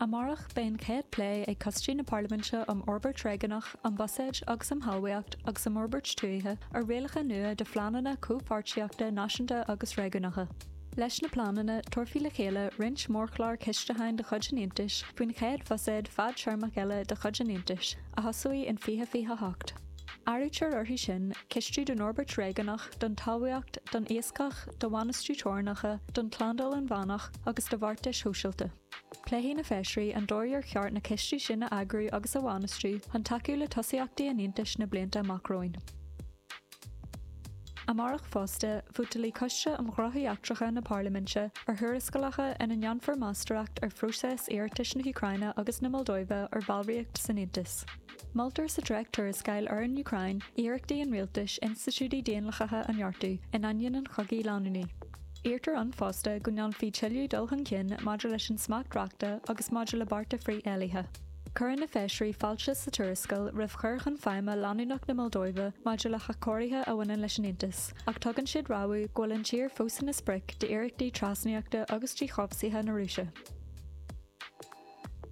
Amárach beidh an chéad plé ag coistí na Parlaiminte um Fhorbairt Réigiúnach, um Buiséid agus um Thalmhaíocht agus um Fhorbairt Tuaithe ar rialacha nua do phleananna comhpháirtíochta náisiúnta agus réigiúnacha. Leis na pleananna, tabharfaí le chéile roinnt mórchlár cistiúcháin de chuid an Aontais faoin chéad bhuiséad fadtéarmach eile de chuid an Aontais, a thosóidh in 2028. Áirítear orthu sin cistiú don fhorbairt réigiúnach, don talmhaíocht, don iascach, do bhainistiú teorainneacha, don tslándáil inmheánach, agus do bheartais shóisialta. Pléifidh na Feisirí an dóigh ar cheart na cistí sin a eagrú agus a bhainistiú chun tacú le tosaíochtaí an Aontais na blianta amach romhainn. Amárach fosta, vótalfaidh Coiste um Ghnóthaí Eachtracha na Parlaiminte ar thuarascálacha ina ndéanfar meastóireacht ar phróiseas iarratais na hÚcráine agus na Moldóive ar bhallraíocht san Aontas. Moltar sa dréacht-tuarascáil ar an Úcráin iarrachtaí an rialtais institiúidí daonlathacha a neartú in ainneoin an chogaidh leanúnaigh. Iarrtar ann fosta go ndéanfaí tuilleadh dul chun cinn maidir leis an smacht reachta agus maidir le bearta frith-éillithe. Cuireann na Feisirí fáilte sa tuarascáil roimh chur chun feidhme leanúnach na Moldóive maidir le hathchóirithe a bhaineann leis an Aontas, ach tugann siad rabhadh go bhfuil an tír fós ina sprioc d'iarrachtaí trasnaíochta agus díchobhsaithe na Rúise.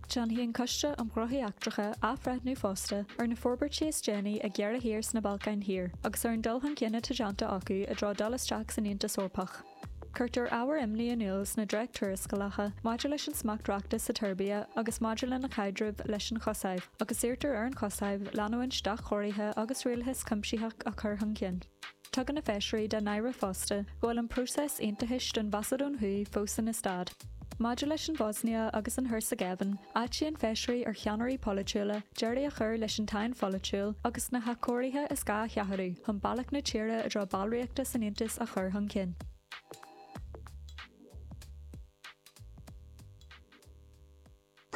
Déanfaidh an Coiste um Ghnóthaí Eachtracha athbhreithniú fosta ar na forbairtí is déanaí ag iarrthóirí sna Balcáin Thiar agus ar an dul chun cinn atá déanta acu i dtreo dul isteach san Aontas Eorpach. Cuirtear ábhair imní in iúl sna dréacht-tuarascálacha maidir leis an smacht reachta sa tSeirbia agus maidir lena caidreamh leis an Chosaiv, agus iarrtar ar an Chosaiv leanúint d'athchóirithe agus rialachas cuimsitheach a chur chun cinn. Tugann na Feisirí dá n-aire fosta go bhfuil an próiseas aontachais don Mhacadóin Thuaidh fós ina stad. Maidir leis an Bhoisnia agus an Heirseagaivéin, áitíonn Feisirí ar cheannairí polaitiúla deireadh a chur leis an tsáinn pholaitiúil agus na hathchóirithe is gá a sheachadadh chun bealach na tíre i dtreo ballraíochta san Aontas a chur chun cinn.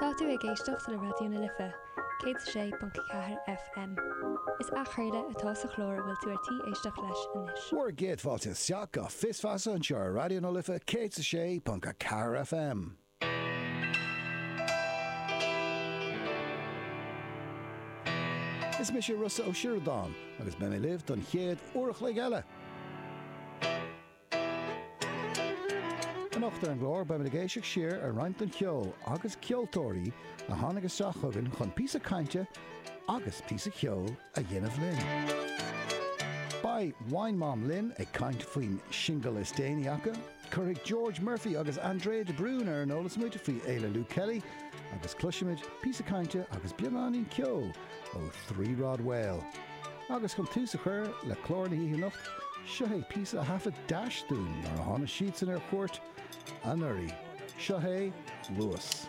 Tá tú ag éisteacht le Raidió na Life, 106.4 FM. Is athchraoladh atá sa chlár a bhfuil tú ar tí éisteacht leis anois. Bhur gcéad fáilte isteach go Fios Feasa anseo ar Raidió na Life 106.4 FM. Is mise Rossa Ó Sioradáin agus beidh mé libh don chéad uair a chloig eile. Anocht ar an gclár beimid ag éisteacht siar ar roinnt den cheol agus ceoltóirí a tháinig isteach chugainn chun píosa cainte agus píosa ceoil a dhéanamh linn. Beidh Wine Mom linn ag caint faoin singil is déanaí acu, cuirfidh George Murphy agus Andrea de Brún ar an eolas muid faoi Fhéile Luke Kelly agus cloisfimid píosa cainte agus beagáinín ceoil ó Three Rod Whale. Agus chun tús a chur le clár na hoíche anocht, seo é píosa a thaifead Dash dúinn nuair a tháinig siadsan ar chuairt anuraidh. Seo é Luas.